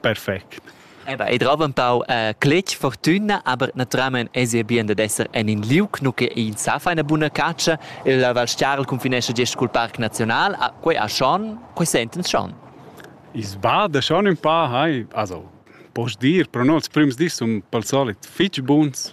perfect. Eba, ei drova empau uh, cletg fortuna, aber naturalmein esi bien dad esser en in liug, nu che ins sa fa ina buna catscha. Il Val Stiarl cunfinescha gest cul Parc Naziunal, ah, quei ha schon, quei sentens schon. Is bada schon un pa, hai, also, posch dir, pro nols prims dis sun pal solit fitg buns,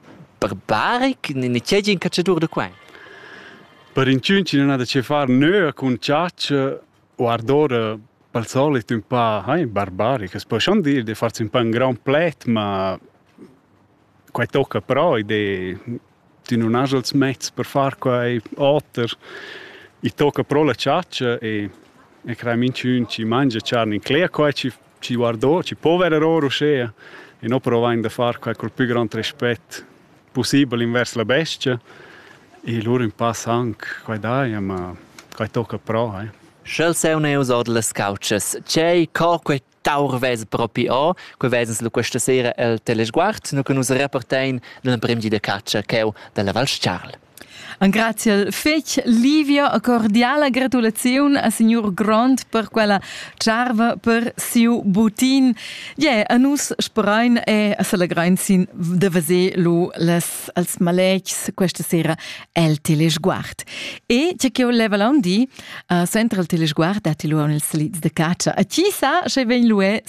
Barbaric, nin e tgei in catschadur da quei? Per inchün chi non ha da che far nöa cun chatscha u ardora pel solit ün pa hai barbaric. As po schon dir de farsi ün pa ün grand pled, ma quai tocca però ed e tü nun has els mezs per far quai oter. I tocca pro la chatscha e e crei minchün chi mangia charn in cler, quai chi Ci guardò, ci pover error uschea e no provain da far quai col pü grand respet possibel invers la bestia e lur ün pass anc, quai daia, ma quai tocca pro, eh. Sch'el seun eus ord las couchas, c'ei co quei taur vez propi o, que vezens lu questa sera el telesguard, nu che nus repartein dal prim di de catscha cheu dalla Val Charl. Grazia fetg Livia a cordiala gratulaziun a signor Grond per quella charva per siu butin. Yeah, a nus sperain e celegrain sin de veser lu les als maletgs questa sera el telesguard. E tge che ho leva l'on di, uh, sentra il telesguard datti lu ils lids de caccia. A chi sa, sche vegn lu